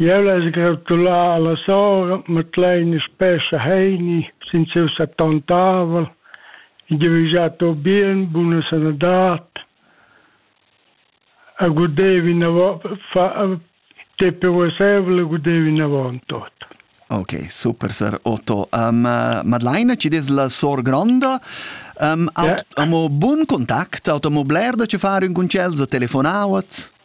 Jeu less gratular alla sora Madeleine spessa Heini sin siu settantavel e devisar a tu bien buna sanadad e gudevi te per uassevel e gudevi navon tot. Ok, super sir Otto. Um, Madeleine, ci des la sor gronda. Um, aut, yeah. Amo bun contact, auto mo bler da ci fare un concels a telefonauat.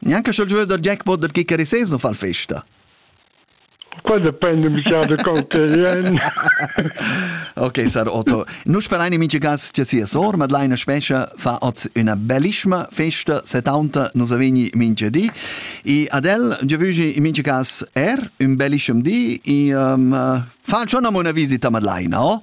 Neanche sch'el giuda dal jackpot dal kicker sez non fa festa. Qua depende mica de conterien. ok, sar Otto. Nu sperain in mincha cas che sia sor Madlaina Spescha fa oz üna bellissima festa 70 nos avegni mincha di. E ad el giavügi in mincha cas er un bellischem di e um, fa schon una visita a Madlaina, oh?